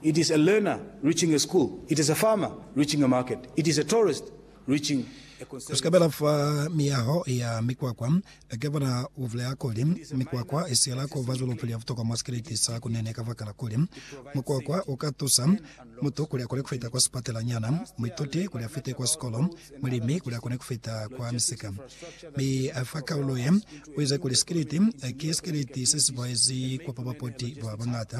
It is a learner reaching a school, it is a farmer reaching a market, it is a tourist reaching a conservatory. Ku sikabela fa miyaho ya mikwakwa, Ke bona u bulela kuli, mikwakwa i siyela ku ba julupu ya butokwa mwa sikeleti sa hakunene kabakala kuli, mukwakwa u ka tusa mutu kuli a kone ku fita kwa sipatelanyana, muituti kuli a fite kwa sikolo, mulimi kuli a kone ku fita kwa misika. Mi fa kaulo ye, u ize kuli sikeleti ki sikeleti se si boezi kwa ba bapoti ba bañata,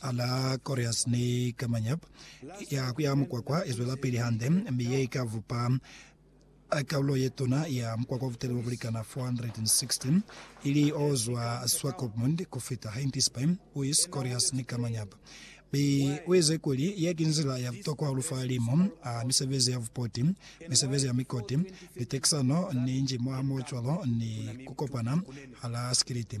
Ala Corias ni Camanyep ya ku ya mukwakwa i zwelapili hande, mi ye i ka vupa kaulo ye tuna ya mukwakwa wa buteli bo bu likana 460, ili o zwa Swakopmund ku fita Heintisbein, Uis, Corias ni Camanyep. Mi u ize kuli ye ki nzila ya butokwa hahulu fa limu a misebezi ya bupoti, misebezi ya mikoti, liteksano ni nji mwahamoocwalo ni ku kopana hala sikiliti.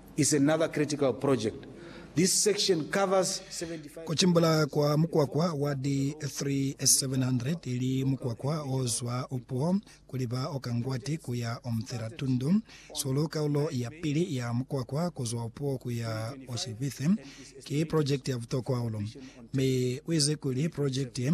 is another critical project. This section covers 75. Ku cimbula kwa mukwakwa wa di 3,700 ili mukwakwa o zwa upuo ku liba o ka Ngwati ku ya o Mthira Tundu Sulu kaulo ya pili ya mukwakwa ku zwa upuo ku ya o Shivithe ki project ya butokwa hahulu. Mi u ize kuli project ye